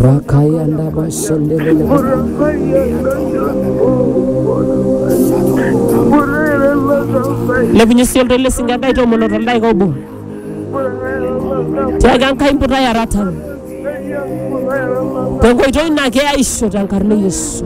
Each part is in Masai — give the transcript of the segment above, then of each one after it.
Rakaya ndaba shendelele. Lepunye sii oltoilo esinka ndai tomono to ndaika obo. Tiaaki Enkai mputai aratan. Tenkoitoi naa keyaisho tenkarna e Yesu.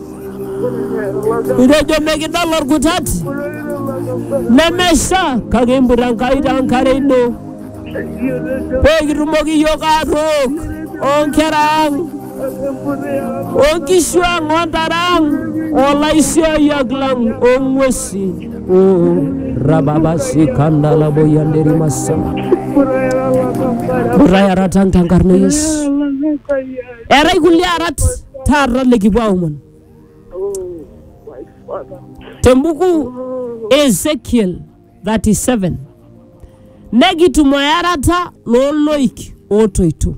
Itejo mikidol orkutat nemesha kake imputa Enkai taa enkare ino pee kitumoki iyiook atook oonkera ang onkishu ang ontare ang olaisiayiak lang ong'uesi oo rababasikanalaboyanderimasa Mputa erata ang tenkarna e Yesu Eetae kulie arat taata likipuo aomon Oh, my father. tembuku Oh, e Ezekiel 37 nekitum earata looloik ootoito.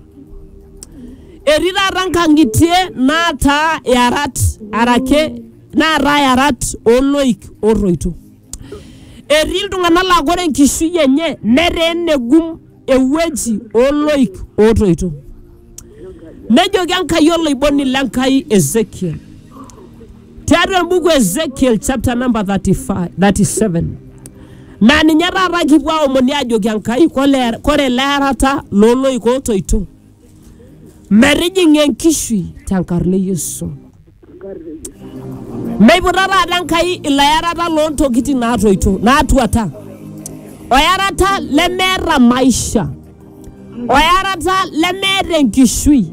Etii taata nkang'itie naataa iarat arake naataa iarat ooloik ootoito. Etii iltung'anak laa ore enkishui enye netaa enegum ewueji oo loik ootoito. Nejoki Enkai oloiboni le Nkai Ezekiel tiatua embuku e Ezekiel chapter number 35, 37 naa ninye taata kipuo aomoni aajoki Enkai kole- kore ele arata loo loik ootoito metijing'a enkishui tenkarna e Yesu. Meiputa taata Enkai ilayarata loo ntokitin naatoito naatuata, oyarata lemeeta maisha, oyarata lemeeta enkishui,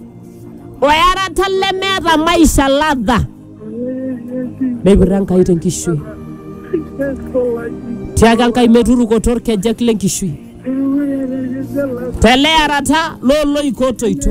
oyarata lemeeta maisha ladha. Meiputa Enkai te nkishui. Tiaka Enkai meturukoto ilkejek le nkishui, te leyarata loo loik ootoito.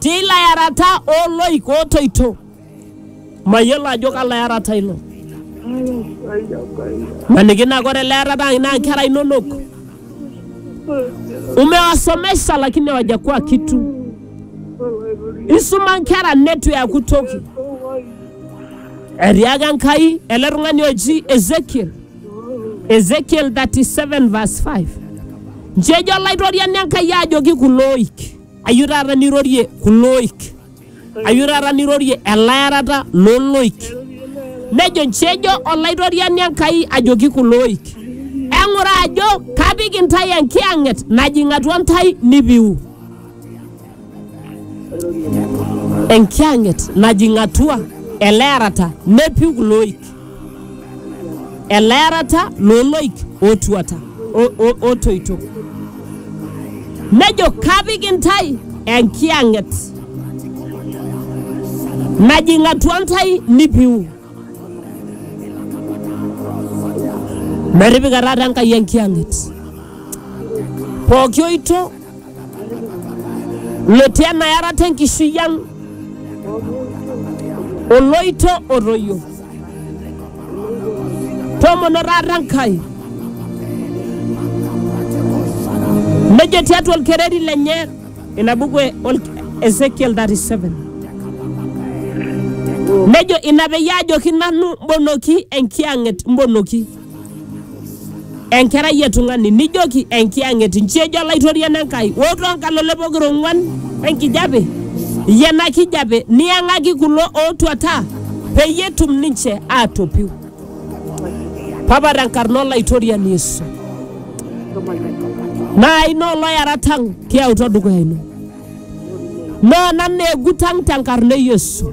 Teilo yarata oo loik ootoito. Mayiolo ajo kalo yarata ilo. Maniki naa ore ele yarata ang naa nkera inonok. Umewasomesha lakini hawajakuwa kitu. Isuma nkera netu eaku toki. Etiaka Enkai ele tung'ani oji Ezekiel. Ezekiel 37 verse 5. Nji ejo Olaitoriani Enkai ajoki kulo oik. Ayeu taata nirorie kulo oik, ayeu taata nirorie elaarata loo loik. Nejo nchi ejo Olaitoriani Enkai ajoki kulo oik, eng'ura ajo kapik intae enkiyang'et najing atua ntae nipiu. Enkiyang'et najing atua elearata nepiu kulo oik. elaarata looloik ootuata o- o- ootoito. Nejo kapik intae enkiyang'et najing atua ntae nipiu. Metipika taata Enkai enkiyang'et pooki oito lotii enayarata enkishui ang oloito otoyio tomono taata enkai nejo tiatua olkereri lenye ina buku e ol- ezekiel 37 nejo ina peyie ajoki nanu mbonoki enkiyang'et mbonoki enkerai e tung'ani nijoki enkiyang'et nchi ejo olaitoriani Enkai oo toonkalole pokira ong'uan enkijape iyie ena kijape niyang'aki kulo ootuata peyie etum ninche aatopiu papa tenkarna olaitoriani Yesu naa ina oloyarat ang kiyautua dukuya ino naa nanu egut ang tenkarna e Yesu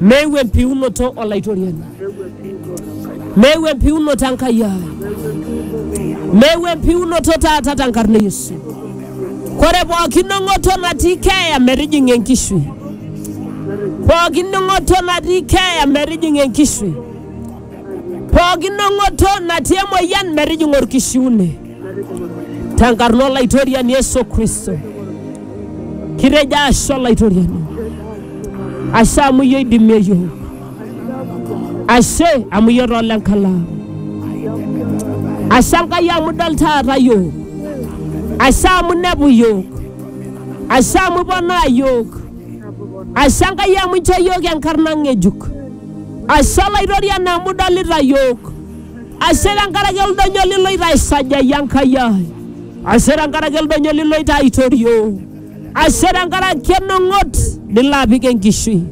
Meeu empiunoto Olaitoriani, meeu empiunoto Enkai ai, meeu empiunoto taata tenkarna e Yesu. Kore pooki ning'oto natii keeya metijing'a enkishui, pooki ning'oto natii keeya metijing'a enkishui, pooki ning'oto natii emoyian metijing'a olkishiune. tenkarna olaitoriani Yesu Kristo. Kitejo ashe olaitoriani, ashe amu iyie oidimie iyiook, ashe amu iyie too lenkalamu, ashe Enkai amu idol taata iyiook, ashe amu inepu iyiook, ashe amu iponaa iyiook, ashe Enkai amu inchoo iyiook enkarna ng'ejuk, ashe olaitoriani amu idolita iyiook. Ashe tenkaraki oldonyo liloito aisajayie Enkai ai. Ashe tenkaraki oldonyo liloito aitorio. Ashe tenkaraki enong'ot nilo apik enkishui.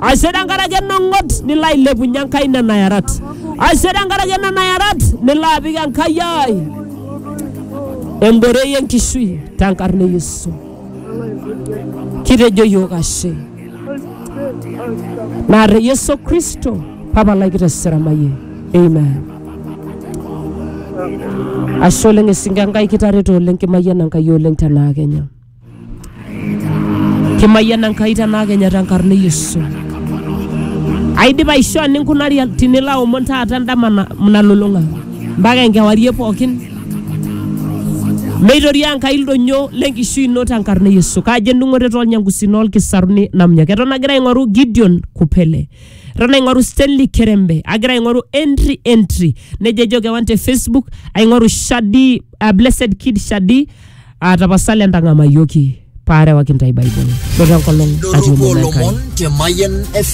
Ashe tenkaraki enong'ot nilo ailepunye Enkai nena yarat. Ashe tenkaraki nena yarat nilo apik Enkai ai emborei enkishui tenkarna e Yesu. Kitejo yiok ashe. naa te Yesu Kristo tapalaki te seramaye amen ashe oleng esinka Enkai kitareto oleng kimayiana Enkai oleng tenaa Kenya kimayiana Enkai tenaa Kenya tenkarna e Yesu aidipa aishoo ninkunari tinilo aomon taata endama na- nalulung'a mpaka enkewarie pookin Meitoria Enkai ildonyo le nkishui ino te nkarna e Yesu. Kajo endung'oto too lnyangusi noo lkisaruni namnyaki. Eton agira aing'oru Gideon Kupele. Eton aing'oru Stanley Kerembe. Agira aing'oru entry entry. Nejo ejo kewan te Facebook. Aing'oru Shadi, uh, Blessed Kid Shadi. Uh, tapasali entang'amayioki paarewaki ntae Bible. Ore enkolong atii Doropo omom Enkai. lomon te Mayan FM.